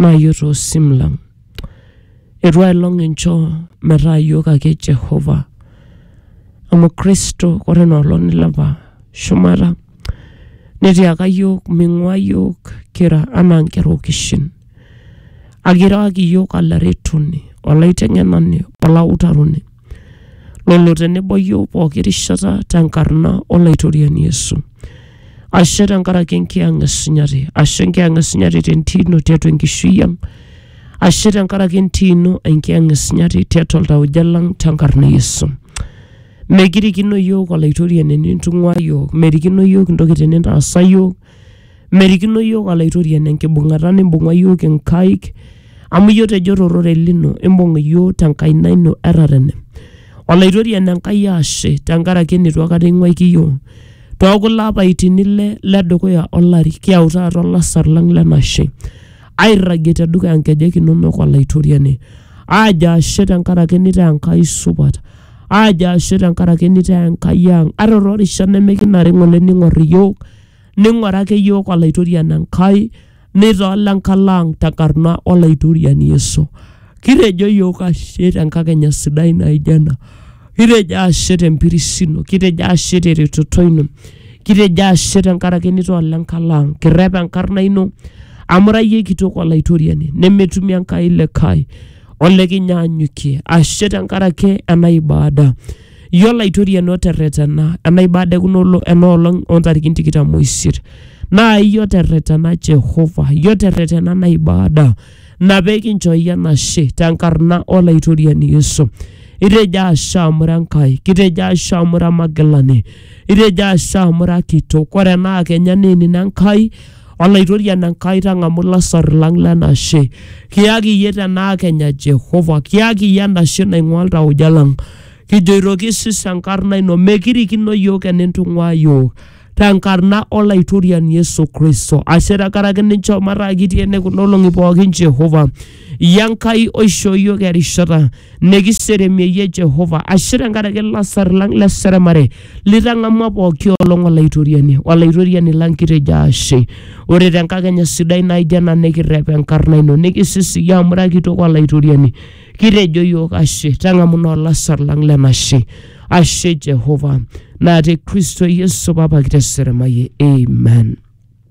naa iyiook too sim lang. Eitu ai long inchoo metaa iyiook ake Jehova amu Kristo ore ina olong nilepa shumata netiaka iyiook ming'ua iyiook kira anaa nkera okishin. Kake ira ake iyiook olaretoni, olaiteng'enani, olautaroni. lolo tenebo iyiook pooki rishata tenkarna Olaitoriani Yesu. Ashe tenkaraki enkiyang' esunyati, ashe enkiyang' esunyati tentii ino tiatua enkishui ang', ashe tenkaraki entii ino enkiyang' esunyati tiatua iltauja lang' tenkarna Yesu. Mekirikino iyiook Olaitoriani enintung'uaa iyiook, merikino iyiook intokitin nintaasa iyiook, Merikino iyiook Olaitoriani enkibung'ata nimbung'a iyiook inkaik amu iyie otejo to rorei lino imbung iyiook te nkaina ino e tatene. Olaitoriani Enkai ashe tenkaraki enitu aikata ing'uaiki iyiook too kulo apaitin ile le dukuya o lari kiyau taata olasar lang le nashe airragie te dukuya nkejek inonok Olaitoriani aajo ashe tenkaraki nitaa Enkai supat Aajo ashe tenkaraki nitaa Enkai ang'. Ata too rishat nimikinare ng'ole ning'or iyiook, ning'ura ake iyiook Olaitoriani Enkai, nitaa ole nkalo ang' tenkarna Olaitoriani Yesu. Kitejo iyiook ashe tenkakenya sidai naijo ena. Kitejo ashe tempiris ino, kitejo ashe teretoto ino, kitejo ashe tenkaraki nitaa ole nkalo ang'. Kirrep enkarna ino amu ira iyie kitok Olaitoriani nemetumi Enkai likae ole kinyaanyukie ashe tenkaraki ena ibada yiolo aitoriani oterretena ena ibada ekuna olo- ena olong ontarikini tikitam oisiet naa iyie oterretena Jehova iyie oterretena ena ibada ina pekinchooyie enashe tenkarna olaitoriani Yesu itejo ashe amu ira Enkai kitejo ashe amu ira magilani itejo ashe amu ira kitok ore ena kenya naa enino Enkai Olaitoriani Enkai tang'amu lasar lang lenashe. Kiyaki iyie tenaa kenya Jehova, kiyaki iyie enashe naing'ua iltauja lang. Kijoito kisis enkarna ino, mekirikino iyiook enintung'uaa iyiook. Tenkarna Olaitoriani Yesu Kristo, ashe tenkaraki ninchoo mataa kitii ene kuna olong'i pookin Jehova. ya Nkai oishoo iyiook erishata nikiseremieyie Jehova ashe tenkaraki ilasar lang le seremare litang'amua pooki olong Olaitoriani. Olaitoriani lang kitejo ashe. Ore tenkakenya sidai naijo ena nikirrep enkarna ino nikisisiyie amu ira kitok Olaitoriani. Kitejo iyiook ashe tang'amu naa olasar lang lenashe. Ashe Jehova naa te Kristo Yesu papa kiteseremaye. Amen.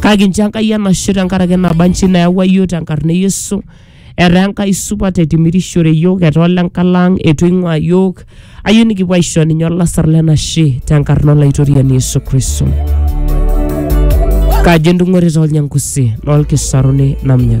kake inchoo Enkai enashe tenkaraki naba nchi nayawua iyiook tenkarna e Yesu. Etaa Enkai supat etimirishore iyiook, etaa ole nkala ang' eitu eing'uaa iyiook. Ayieu nikipuo aisho ninye olasar le nashe tenkarna Olaitoriani Yesu Kristo. Kajo entung'ore too Lnyangusi, noo Lkisaruni namnya.